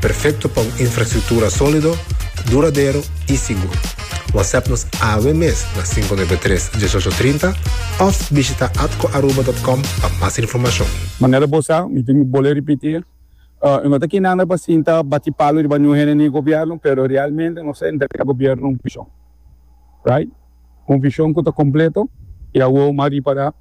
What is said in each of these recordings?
Perfecto pa un infrastructura solido, duradero y sigur. WhatsApp nos awe mes na 593 1830 of bishita atcoaruba.com pa mas informacion. Manera bo sa, mi tin bol'e ripiti, e no ta kinanda pa sinta bati palu riba niun hende ni e gobierno, pero realmente nos a entrega e gobierno un vision, right? Un vision cu ta completo y awor m'a ripara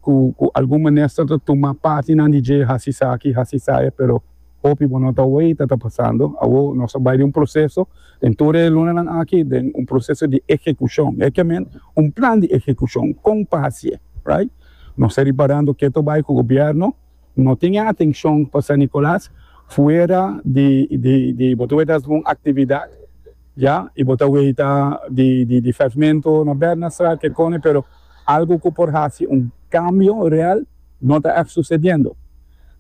cu algun minister ta tuma partinan di dje haci sa aki, haci sa e, pero Hopi bo no ta oe y ta ta pasando. Awo nos a bai den un proceso den tur e lunanan aki den un proceso di ehecucion. E ke men un plan di ehecucion con pa haci'e, right? Nos ta riparando ke ta bai cu gobierno no tin e atencion pa San Nicolas fuera di di bo ta oe tas un actividad ya y bo ta oe ta di di pavemento na Bernardstraat kekone pero algo cu por haci un cambio real. No ta èf susediendo.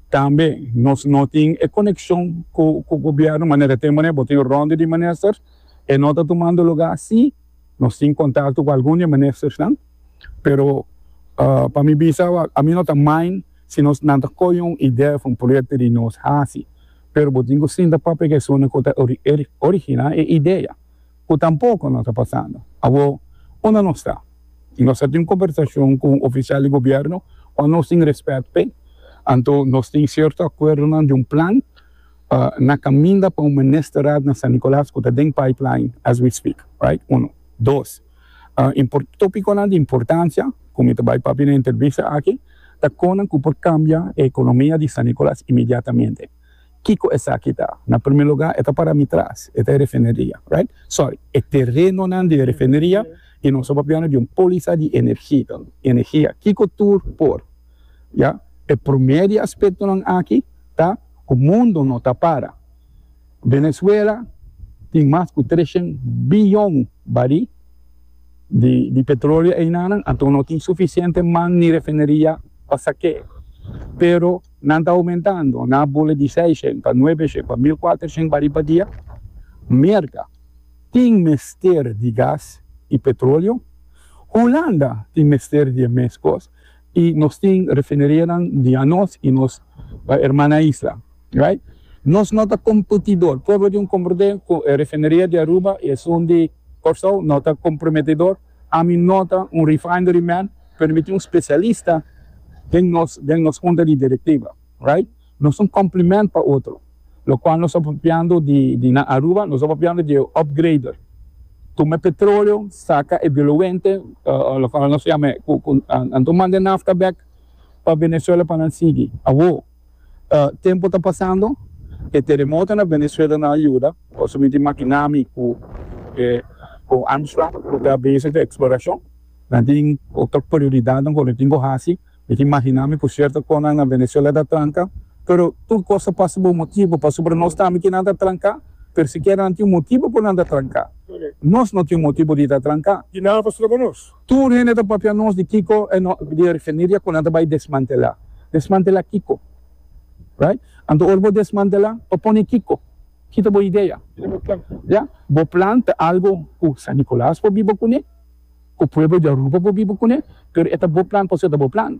Tambe nos no tin e konekshon ku ku gobièrnu manera te manera bo tin rònde di minister e no ta tumando lugá. Sí, nos tin kontakto ku algun di e ministersnan, pero pa mi bisa awa a mi no ta main si nos nan ta koyo un idea òf un proyekto di nos hasi, pero bo tin ku sinta papia ku esunnan ku ta originá e idea. ku tampoko no ta pasando. Awor, unda nos ta? Nos a tin un kombersashon ku un ofisial di gobièrnu ku nos tin rèspèt p'e, anto nos tin sierto akuerdonan di un plan na kaminda pa un ministerat na San Nicolas ku ta den pipeline as we speak, right? Uno. Dos, tópikonan di importansia ku mi ta bai papia na entrevista aki ta konan ku por kambia e ekonomia di San Nicolas inmediatamente. Kiko esaki ta? Na primer lugar e ta para mi tras, e ta e refineria, right? Sorry, e terenonan di e refineria y nos a papia di un poliza di energi ta, energia. Kiko tur por, ya? E primer di aspectonan aki ta cu mundo no ta para. Venezuela tin mas cu treshen biyon barí di di petroleo einanan, anto no tin suficiente man ni refineria pa sake'e. Pero. Nan ta oumentando na bule di seis shen pa nuebe shen pa mil kuater shen bari pa dia. Merka tin mester di gas i petroleo. Hulanda tin mester di e mes kos i nos tin refinerianan di anos i nos erman na isla. Right? Nos no ta kompetidor. Pueblo di un kompetidor ku e refineria di Aruba i esun di Kòrsou no ta komprometedor. Ami no ta un refinery man, pero mi tin un specialista den nos den nos hunta di directiva, right? Nos ta un complement pa otro, locual nos ta papiando di di na Aruba nos ta papiando di e upgrader, tuma e petroleo, saca e diluente, locual nos yama e cu cu anto manda e nafta bek pa Venezuela pa nan sigui, awor. Tempu ta pasando, e teremoto na Venezuela no a yuda. Pasobra mi tin makinami ku e con Armstrong ku ta bezig den eksploracion. Nan tin otro prioridadnan ku nan tin ku hasi. Mi tin makinami ku cierto cosnan na Venezuela ta tranca. Pero tur cos ta pasa pa un motibu. Pasobra nos tambe kier nan ta tranca, pero sikiera nan tin un motibu ku nan ta tranca. Nos no tin un motibu di ta tranca. Di nan a pasado cu nos? Tur hende ta papia nos di kiko e no di e refineria ku nan ta bai desmantela. Desmantela kiko? Right? Anto ora bo desmantela pa pone kiko? Kita bo idea. Ya? Bo plan ta algo ku San Nicolas por biba kune, ku pueblo di Aruba por biba kune, pero e ta bo plan pasobra e ta bo plan.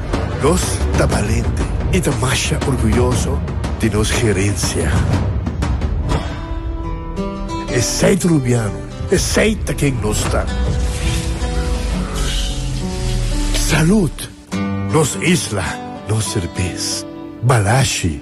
Nos ta balente i ta masha orguyoso di nos herensia. Esei ta Rubiano, esei ta ken nos ta. Salud! Nos isla, nos serbes. Balashi!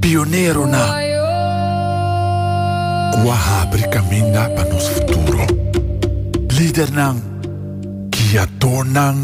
Pioneronan ku a habri kaminda pa nos futuro. Lidernan, giatornan.